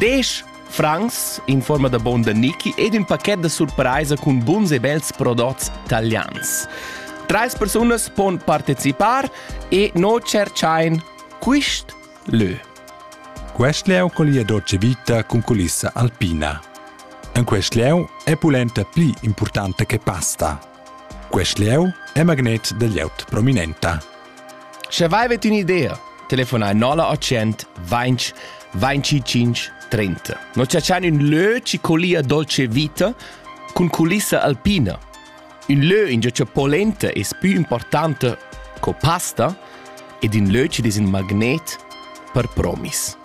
Desch francs in forma da bon da Niki ed ün pachet da surpraisa cun buns e bels prodots talians. Trais persunas pon participar e no cerchain quist lö. Quest leu collia dolce vita cun culissa alpina. En quest leu è pulenta pli importante che pasta. Quest leu è magnet da lieut prominenta. Sche vaivet ün'idea, telefonai 0800 20 25 30. Noi ciacian ün lö chi colia dolce vita cun culissa alpina. Un lö ingio cha polenta es pü importante co pasta ed ün lö chi'd es ün magnet per promis.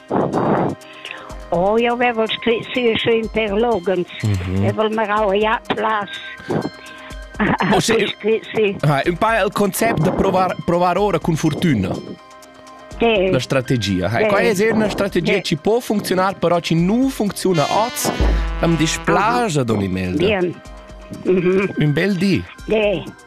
Oh, jau vevel scrit sia schön per logens. Mhm. Evel marau ja plas. Ah, un pa il concept da provar, provar ora con fortuna. Sì. La strategia. Sì. Qua è una strategia sì. ci può funzionare, però ci non funziona oggi. Am dispiace, Don Imelda. Bien. Mm -hmm. Un bel dì. Sì.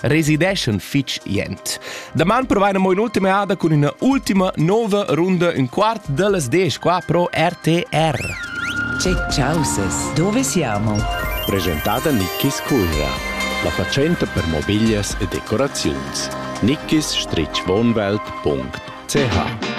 resideschan fitg jent. Daman provaina mo un'ultima eada cun üna ultima nova runda ün quart dellas desch qua pro RTR. Che causes, dove siamo? Presentada Nickis Cuira, la fatschenta per mobiglias e decoraziuns. Nickis-wohnwelt.ch